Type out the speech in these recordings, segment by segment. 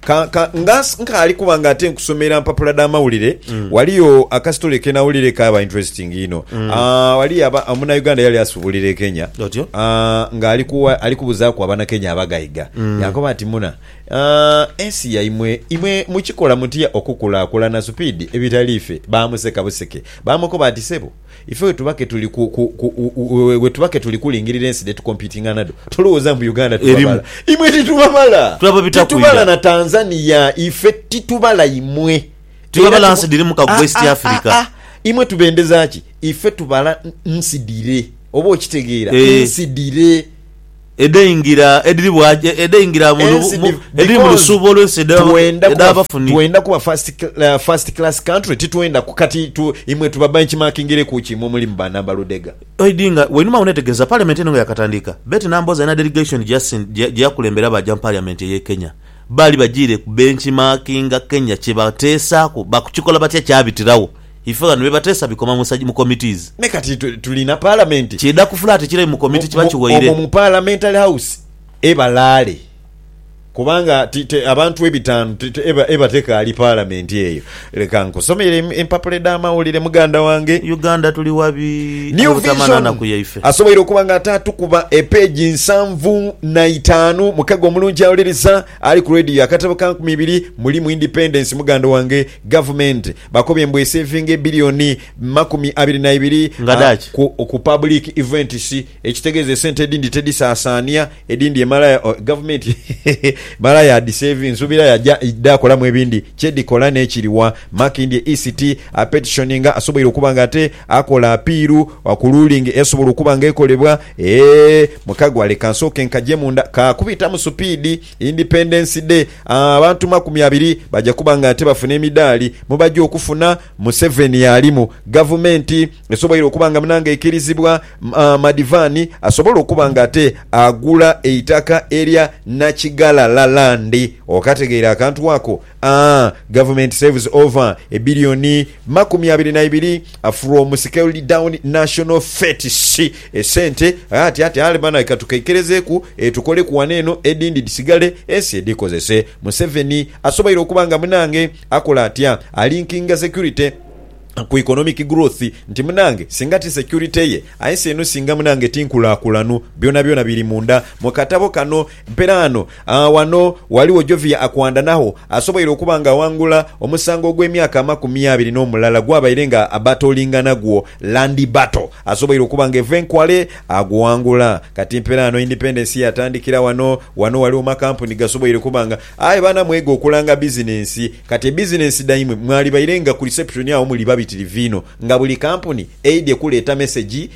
Ka, ka, nga nsi- nkaali kuba nga ate nkusomera mpapula dha mawulire, waliyo akasitole ke nawulire kaaba interesting inho. Ah, waliyo aba, omunauganda yali asubulira e Kenya. Otyo. Ah, nga ali kuwa ali kubuzaaku abanakenya abagaiga yankoba nti muna ah, ensi yaimwe imwe mukikola mutya okukulakulana supiidi ebitali ffe baamuseka buseke baamukoba nti sebo Ife bwe tuba ke tuli ku, ku, ku, bwe tuba ke tuli kulingirira ensi dhe tukompitinga nadho, tolowooza mbu Uganda tubabala. Imwe titubabala. Titubala na Tanzania. Ife titubala imwe. Tibabala nsi dhiri mu ka West Africa. Imwe tubendeza ki? Ife tubala nsi dhire. Oba okitegeera? Nsi dhire. Edheingira edhiri bwa edheingira mu Ensi mu div edhiri mu because lusuubo olw'ensi edha twenda kuba edh'abafunhi. twenda kuba first cla first class country titwenda ku kati tu imwe tuba benchmarkingireku ki imwe omuli mu ba namba ludega. Oidhi nga wainuma agho neetegereza parliament eno nga yaakatandiika, Betty Nambooze alina delegation gye yasin gye gye yakulembera baaja mu parliament ey'e Kenya. Baali bajiire ku benchmarkinga Kenya kye bateesaaku bakukikola batya kyabitiragho. Ife ghano bye bateesa bikoma mu committees. Me kati tuli na palamenti. Kidha kufula ati kirayi mu committee kiba kiwaire. Omwo mu parliamentary house ebalaale kubanga abantu ebitaanu eba tekaali palamenti eyo. Leka nkusomere empapula edh'amawulire muganda wange. Uganda tuli wabi aye butamala naku yaife. Asoboire okuba nga ataatukuba epeegi nsanvu na itaanu mukego omulungi awuliriza. Ali ku Radio akatabo ka nkumi ibiri mulimu Independence muganda wange Gavumenti bakobye mbu eseevinge billioni makumi abiri na ibiri Nga dhaki? ku ku public events ekitegeeza esente edindi tedisaasaania edindi emala ya oh Gavumenti emala yaadhiseevi nsuubira yaja dhaakolamu ebindi kyedhikola n'ekiriwa Makindye ECT apetitioninga asoboire okuba nga ate Akola apiiru ku luulingi esobola okuba nga ekolebwa ee Mukagwa leka nsooke nkaje munda. Ka kubitamu supiidi. Independence Day, abantu makumi abiri baja kuba nga ate bafuna emidaali. Mubaja okufuna. Museveni y'alimu. Gavumenti esoboire okuba nga munange eikirizibwa Madivani asobole okuba nga ate agula eitaka erya Nakighalala Land. Okategeire akantu ako? A Government saves over a billion makumi abiri na ibiri from scaled down national fetes Esente ghati ati ali banae katukeikelezeeku etukoleku wano eno edindi dhisigale ensi edhikozese Museveni asoboire okuba nga munange akola atya a linkinga security ku economic growth nti munange singa ti security ye ensi eno singa munange ti nkulakulanu Byonabyona biri munda mu katabo kano mperaano. Agha ghano ghaligho Jovia Akwandanagho asoboire okuba nga aghangula omusango ogw'emyaka amakumi abiri n'omulala gwabaire nga abattlinga nagwo, Land Battle, asoboire okuba nga eva e Nkwale agughangula. Kati mpela ghano independence yatandikira ghano. Ghano ghaligho makampuni gasoboire okuba nga. Aye baana mwege okulanga bizinensi. Kati ebizinensi dhaimwe mwalibaire nga ku reception agho muli babitirivu inho nga buli kampuni eidhye kuleeta mesegi.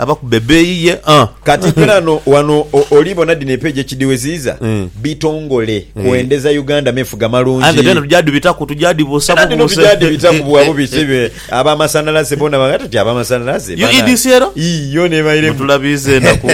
Abakube ebeeyi ye a. Kati ghano wano oli bona dhino epeegi ekidhiweziiza bitongole kwendeza Uganda mefuga malungi. Aye nga dhona tugya dhibitaku tugya dhibuusa bubuuse. Era dhino tugya dhibitaku bwa bubisi be aba masanalaze bona ba ghati ti aba masanalaze banange. UEDC ero? Ii yoona ebairemu. Mutulabiiza enaku.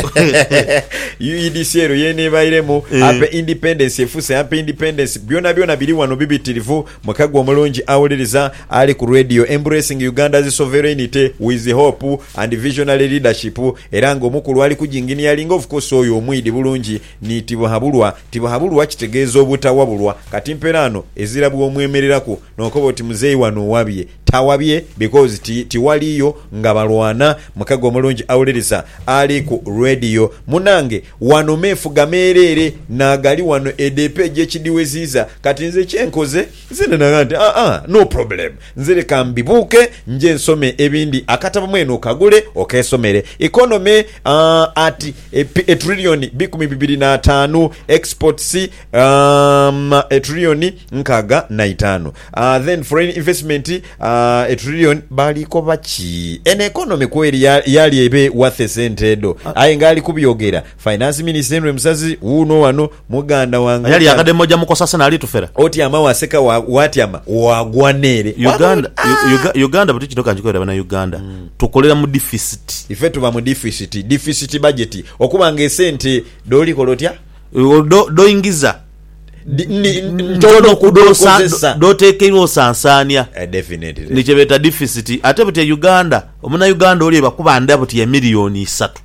UEDC ero yeena ebairemu. Ampe independence efuuse ampe independence byona byona biri wano bibitirivu. Muka gwe omulungi awuliriza ali ku Radio embracing Uganda's sovereignty with hope and visionary leadership era nga omukulu ali ku ginginiyalinga of course oyo omwidi bulungi ni Tibuhabulwa Tibuhabulwa kitegeeza obutawabulwa kati mperaano ezira bwomwemereraku nokoba oti muzeeyi wano owabye tawabye because ti tiwaliyo nga balwana Muka gwe omulungi awuliriza ali ku Radio munange Wano meefuga meereere n'agali wano edo epeegi ekidhiweziiza. Kati nze kye nkoze, nze nagha nti, Aa, no problem. Nze leka mbibuuke nje nsome ebindi. Akatabo mwene okagule okeesomere. Economy at a trillion bikumi bibiri n'ataanu, exports a trillion nkaaga na itaanu. Then foreign investment a trillion bali koba ki? Eno economy kweri yali ebe worth esente edho? Aye nga ali kubyogera finance minister Henry Musazi wuuno wano muganda wange. Ayali akademu oja mukosa sena alitufera. Otyama waseka watyama wagwa neere. Uganda Uganda bwetu kino kanjikubulire bana Uganda tukolera mu deficit. Ife tuba mu deficit, deficit budget okuba nga esente doli kola otya? Dho dhoingiza. Di- ndi- ndi- ntono ntono kudhosa- kudhokozesa. dhotekeirwa osansaania Eh, definitely. ni kyebeeta deficit ate buti e uganda omunauganda oli ebakuba nda buti emiliyoni isatu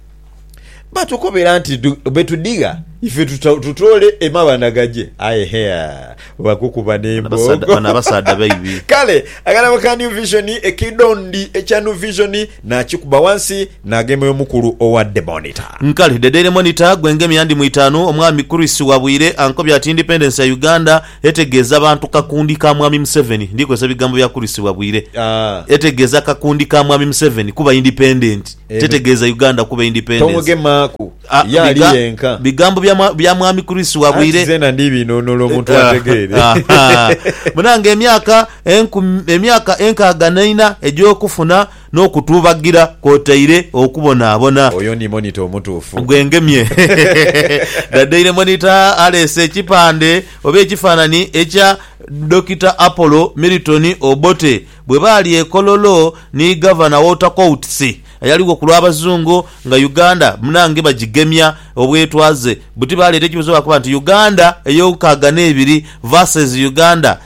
batukobera nti du- betudigha ife tuta- tutoole emabanda gaje aye hea bakukuba Bano abasaadha- bano nembogo abasaadha baibi kale akalabo ka new vision ekidondi ekya new vision nakikuba wansi Nagemya omukulu owa The Monitor. Kale The Daily Monitor gwe ngemya ndi mu itaanu, Omwami Chris Wabwire ankobye ati Independence ya Uganda etegeeza bantu kakundi ka Mwami Museveni, ndi kozesa bigambo bya Chris Wabwire, etegeeza kakundi ka Mwami Museveni kuba independent, tetegeeza Uganda kuba independence. Tomugemaaku, ye ali yenka. Bigambo bya Mwami Chris Wabwire. Anti zeena ndi binunula omuntu ategeere. Munange emyaka enkumi, emyaka enkaaga naina egy'okufuna. N'okutuubagira kwotaire okubonaabona. Oyo ni monitor omutuufu. Gwengemye. The Daily Monitor aleese ekipande oba ekifaananyi ekya Dokita Apollo Milton Obote bwe baali e Kololo ni Gavana Walter Coutts ayaligho ku lw'Abazungu nga Uganda munange bagigemya obwetwaze buti baaleeta ekibuuzo baakoba nti Uganda ey'okaaganeibiri versus Uganda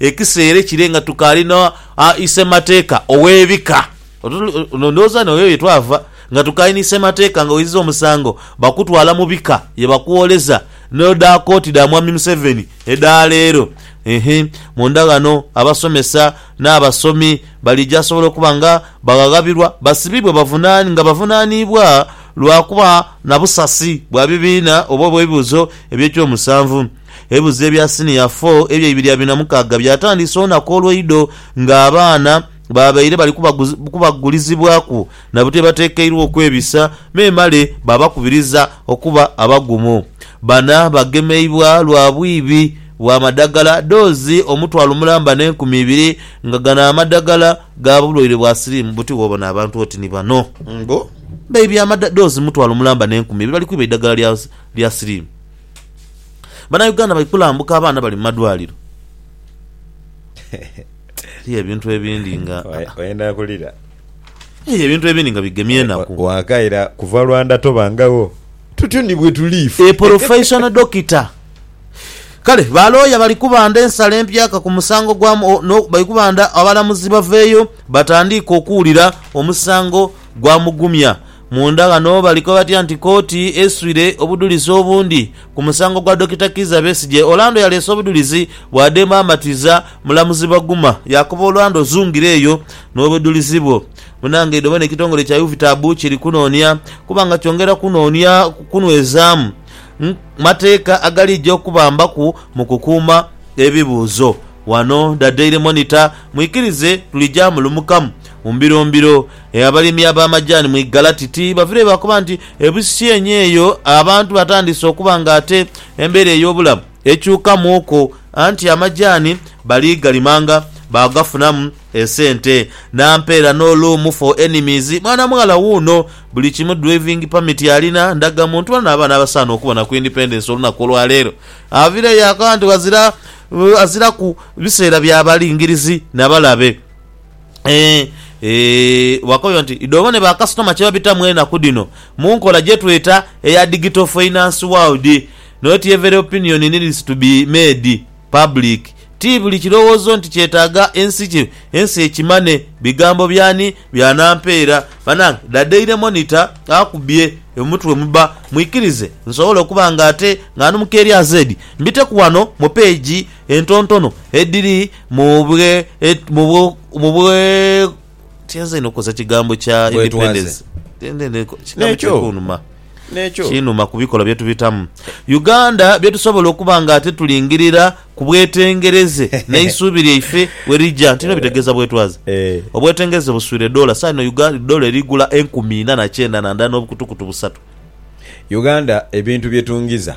Ekisa ere kire nga tukaali no a Isemateeka ow'ebika. Ndhooza n'oyo ye twava nga tukaali ni Semateeka nga oiziza omusango bakutwala mu bika ye bakwoleza no dha kooti dha Mwami Museveni edha leero. Ehe munda ghano abasomesa n'abasomi balija sobola okuba nga baghaghabirwa basibibwe bavunani nga bavunaniibwa lwa kuba na busasi bwa bibiina oba obw'ebibuuzo eby'ekyomusanvu. Ebibuzo ebya Siniya fo ebyeibiri abiri na mukaaga byatandiisa olunaku olweidho nga abaana babaire bali kubagulizibwaku na bwebatekeirwa okwebisa memale babakubiriza okuba abagumu. Bana bagemeibwa lwa bwibi bwa madagala doozi omutwalo mulamba ne nkumi ibiri nga gano amadagala ga bulwaire bwa siriimu buti wobona abantu oti ni bano mbu baibye amadagala doozi mutwalo mulamba ne nkumi ibiri bali kwiba eidagala lya siriimu. Bana Uganda bali kulambuka abaana bali mumadwaliro eriyo ebintu ebindi nga oyenda kulira eriyo ebintu ebindi nga bigemye enaku wakaira kuva lwanda tobangagho tutyo ni bwetuli ife a professional doctor Kale ba looya bali kubanda ensala empyaka ku musango gwa bali kubanda abalamuzi baveeyo batandiike okuwulira omusango gwa Mugumya Munda ghano balikoba batya nti kooti eswire obudhulizi obundi ku musango gwa Dokita Kiiza Besigye? Orlando yaleese obudhulizi bwadembe amatiza, mulamuzi Baguma yaakoba Orlando zungire eyo n'obudhulizi bwo. Munange idho bona ekitongole kya UVITAB kiri kunoonia kuba nga kyongera kunoonia kunwezaamu mateeka agalija okubambaku mu kukuuma ebibuuzo. Wano Da Daily Monitor, Mwikirize tulija mulumukamu mu mbiro mbiro. E Abalimi ab'amajaani mu Igalati ti bavireyo bakoba nti ebusisyenyo eyo abantu batandiise okuba nga ate embeera ey'obulamu ekyukamuuku anti amajaani bali galimanga baagafunamu esente na mpa era no loom for enemies mwana mughala wuuno buli kimu driving permit alina, ndaga muntu bona n'abaana abasaana okubona ku independence olunaku olwa leero avireyo yakoba nti ghazira aziraku biseera bya balingirizi na balabe. Ee, ee, bwakoyo nti, idho obone bakasitoma kye babitamu enaku dhino mu nkola gye tweta eya digital finance world. Not every opinion needs to be made public. Ti buli kirowoozo nti kyetaaga ensi ki, ensi ekimane. Bigambo by'ani? Bya Nampeera. Banange, the Daily Monitor akubye omutwe muba. Mwikirize nsobole okuba nga ate nga ndi mu keerya zeedi, mbiteku wano mu peegi. entontono edhiri mu bwe, mu bwe, mu bwe, kyenze inho okukozesa ekigambo kya independence nekyo nekyo kinuma ku bikolwa bye tubitamu Uganda bye tusobola okuba nga ate tulingirira ku bwetengereze n'eisuubi lyaife we lija nti bino bitegeeza bwetwaze obwetengereze buswire doola saha ino Uganda doola eri gula enkumi ina na kyenda na ndala n'obukutukutu busatu Uganda ebintu bye tungiza.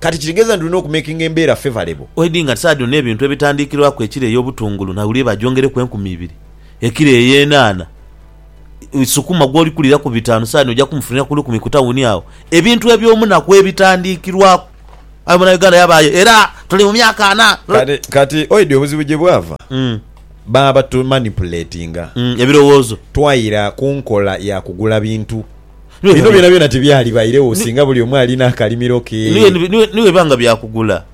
Kati kitegeeza nti tulina okumakinga embeera favourable. Oidhi nga saadi ono ebintu ebitandikirwaku ekiro eyo obutungulu na wire bagyongereku enkumi ibiri, ekiro eyo eyenhaana, sukuma gwoli kuliraku bitaanu saadi noja kumufunira ku lukumi ku tawuni agho. Ebintu ebyomunaku ebitandikirwaku aye munauganda yabaayo era tuli mu myaka ana. Kati kati oidhi obuzibu gye bwava? Baba batu manipulatinga. Ebirowoozo. Twaira ku nkola ya kugula bintu. Bino byonabyona tibyalibairegho singa buli omu alina akalimiro ke. Ni bwe biba nga bya kugula,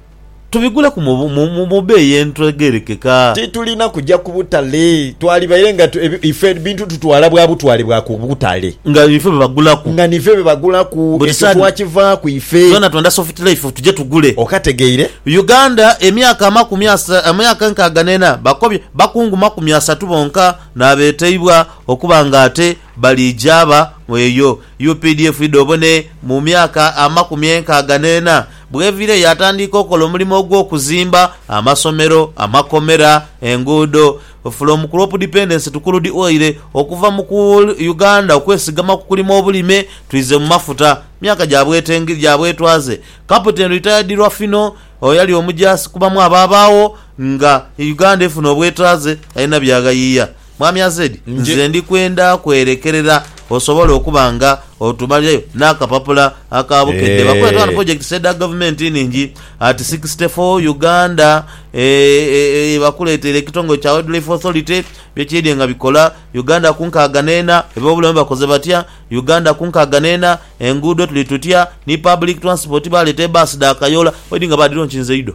tubigulaku mu beeyi etegerekeka. Titulina kuja ku butale. Twalibaire nga ife ebintu tutwala bwa butwale bwa ku butale. Nga nife be bagulaku. Nga nife be bagulaku. Ekyo twakivaaku ife. Twena twenda soft life tuje tugule. Okategeire? Uganda, emyaka amakumi asatu, emyaka enkaaga n'ena, bakobye bakungu makumi asatu bonka n'abeteibwa okuba nga ate. Balijaaba mu eyo updf idha obone mu myaka amakumi enkaaga n'ena bw'eviire yaatandiika okola omulimo ogw'okuzimba amasomero, amakomera, enguudo. From crop dependence to crude oil, okuva mu ku Uganda okwesigama ku kulima obulime twize mu mafuta, myaka gya bwetenge, gya bwetwaze. Captain Retired Rwafino eyali omujaasi ku bamu abaabaagho nga Uganda efuna obwetwaze alina by'aghayiia. Mwami Azed, nze ndi kwenda kwerekerera osobole okuba nga otumalirayo n'akapapula aka bukedde. Bakoye ghano pulojekitisi edha gavumenti enhingi at sixty four Uganda ye bakuleteire ekitongole kya Wildlife Authority bye kiidhye nga bikola, Uganda ku nkaaga n'ena, eby'obulamu bakoze batya, Uganda ku nkaaga n'ena, enguudo tuli tutya, ni public transport baleeta ebaasi dha kayoola, oidhi nga baadhironkinze idho.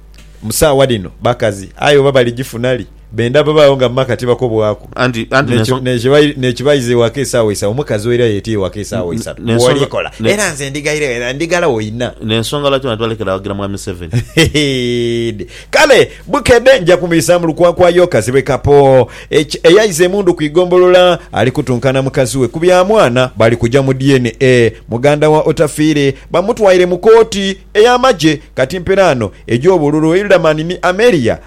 Mu saagha dhino bakazi, aye oba baligifuna li? Benda babaagho nga mu maka tibakobwaku. N'ekibaiza ewaka esaawa isatu, omukazi oira yeetya ewaka esaawa isatu bw'oli kola. Era nze ndighairagho era ndighala oina. N'ensonga lwaki abantu balekera awagira Mwami Museveni. Heede! Kale bukedhe nja kumwisa mu lukwakwayo kazibwe kapo. Eki, Eyaiza emundu ku igombolola ali kutunka na mukazi we ku bya mwana. Bali kuja mu DNA. Muganda wa Otafiire bamutwaire mu kooti. Ey'amagye kati mperaano egy'obululu Hilderman ni Amelia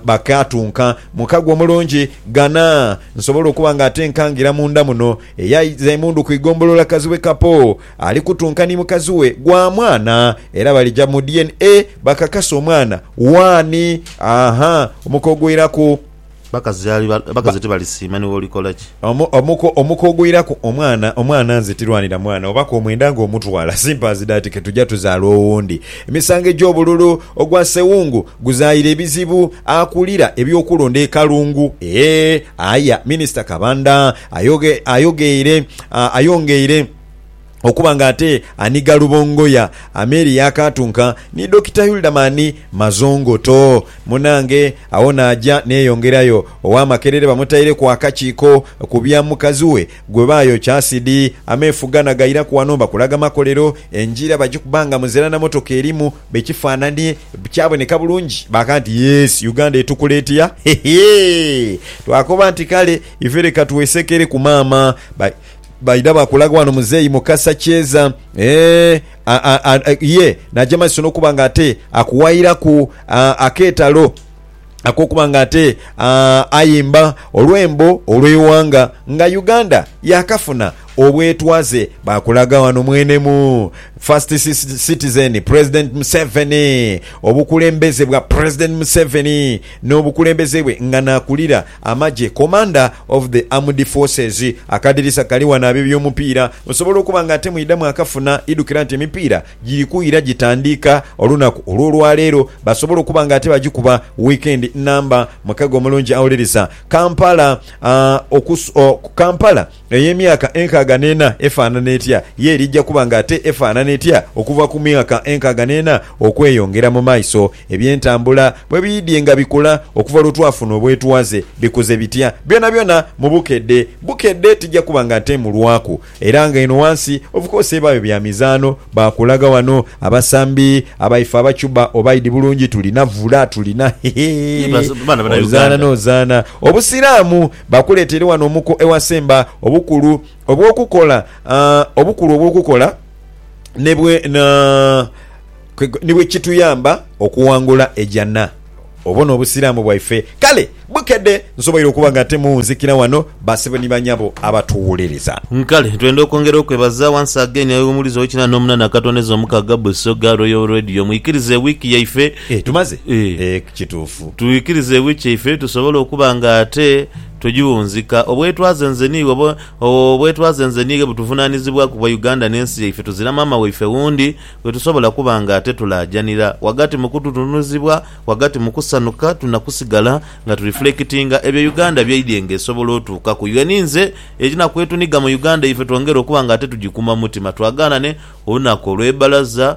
bakaatunka mu kago omulungi ghana nsobole okuba nga ate nkangira munda muno. Eyaiza emundu ku igombolola Kazibwe Kapo ali kutunka ni mukazi we gwa mwana era balija mu DNA bakakase omwana waani omuka ogwiraku. Abakazi tibalisiima ni bw'olikola ki. Omuko, omuko ogwiraku omwana, omwana nze tirwanira mwana oba k'omwenda nga omutwala, simpers that ke tuja tuzaala owundi. Emisango egy'obululu, ogwa ssewungu guzaira ebizibu, akulira eby'okulonda e Kalungu eeh aya Minisita Kabanda ayoge, ayogeire, ayongeire. okuba nga ate anhiga Rubongoya, Ameeri yaakaatunka ni Dokita Hilderman Mazongoto. Munange agho naaja neeyongerayo. Owa Makerere bamutaireku akakiiko ku bya mukazi we gwe baayokya asidi. Ameefuga na gairaku wano mbakulaga makolero. Engira bagikuba nga muzira na motoka erimu. Be kifaananie kyaboneka bulungi baaka nti, Yes, Uganda etukula etya? Hehe! Twakoba nti, Kale ife leka twesekereku maama. Ba. Baidha baakulaga wano muzeeyi Mukasa Kyeza eeh ye naja maiso n'okuba nga ate akuwairaku akeetalo ak'okuba nga ate ayimba olwembo olw'eighanga nga Uganda yaakafuna obwetwaze. Baakulaga wano mwene mu First Citizen, President Museveni, obukulembeze bwa President Museveni n'obukulembeze bwe nga naakulira Amagye, Commander of the Armed Forces. Akadirisa kali ghano ab'ebyomupiira musobola okuba nga ate mwidha mwakafuna. Idhukira nti emipiira giri kwira gitandiika olunaku olw'olwaleero. Basobola okuba nga ate bagikuba weekend nnamba. Mukago omulungi Awuliriza. Kampala, Aah, okus, oh, Kampala. Eyo emyaka enkaaga n'ena efaanana etya? Ye erija kuba ng'ate efaanana etya okuva ku myaka enkaaga n'ena okweyongera mu maiso? Eby'entambula bwe biidhye nga bikula okuva lwe twafuna obwetwaze, bikuze bitya? Byonabyona mu bukedde bukedde tija kuba nga nteemulwaku. Era nga eno ghansi ovukoose ebaayo bya mizaano, baakulaga ghano abasambi abaife abacuba oba idi bulungi, tulina vula, tulina hehe, ozaana n'ozaana. Obusiraamu Bakuleeteire wano omuko ewasemba obukulu obw'okukola, obukulu obw'okukola ni bwe, ni bwe kituyamba okuwangula ejana. Obwo n'Obusiraamu bwaife. Kale bukedde nsoboire okuba nga ate muwunzikira wano, basebo ni banyabo abatuwuliriza. Kale twenda okwongera okwebaza once again Aye Omuwulize ow'Ekinana n'Omunana Akatondeza Omukaaga Busoga Royal Radio. Mwikirize wiiki yaife Eeh tumaze Eeh. eeh kituufu. Twikirize ewi kyaife tusobole okuba nga ate tugiwunzika. Obwetwaze nze niiwe oba obwetwaze nze niighe butuvunanizibwa ku bwa Uganda ne nsi yaife tuzira maama waife wundi gwetusobola kuba nga ate tulaajanira. Wagati mu kututunuzibwa, wagati mu kusanuka tulina kusigala nga tu reflectinga ebyo Uganda byaidye nga esobola otuukaku. Yeni nze ekina kwetuniga mu Uganda yaife twongere okuba nga ate tugikuuma mu mutima twagaanane olunaku olwebalaza,